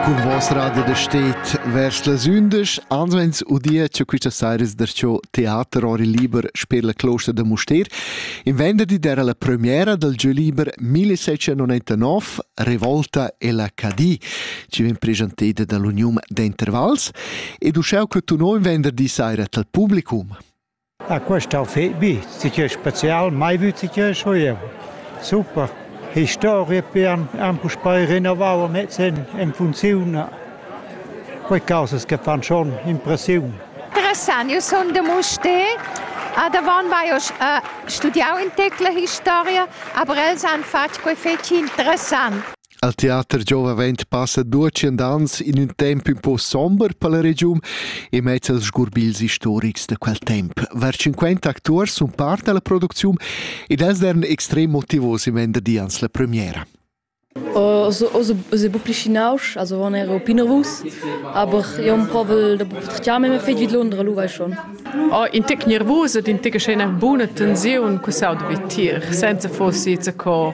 Cun vos radio da stet vers las undisch ans vegns udia che quista saira es darcho teater ori liber sper la closta da Mustér. In venderdi d'era la premiera dal jeu liber 1799 Revolta e la Cadi, ci vegn presenteda dall'Uniun d'Intervals ed uschè che tu no in venderdi saira tal publicum. Ah, quest hau fet bi, ti che spezial, mai vü ti che schuev. Super. Historia pian han puspei rinnovau a mezz'en en funziun. Quei causas che fan schon impressiun. Interessant, io sono de Muste. Davant vai ho uh, studiau in tecla historia, aber els han fatg quei fetg interessant. Al teater giova vent passa duatschient ans in ün temp ün po somber per la regiun e mezz als sgurbils historics da quel temp. Var 50 acturs sun part da la producziun ed els dern extrem motivos in vender di ans la premiera. Os bo plischinaus, also on era pinovus, aber io un provel da potrchiame me fetg vid Londra, lu vai schon. Oh, in tic nervus ed in tic scena buna tensiun cu sau da vitir, senza fossi co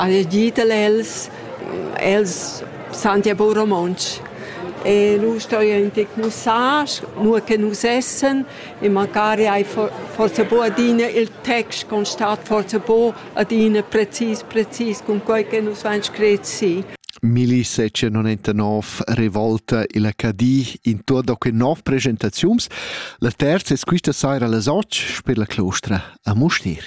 ha gitel els, els san ja bu romontsch. E lu sto io in tec mussar, nur che nus essen, e magari hai forse bu adina il text con stat forse bu adina precis precis con quei che nus vain scret si. 1799 revolta illa Cadi in tur da que nov presentaziuns. La terza es quista saira las 8 per la clostra a Mustir.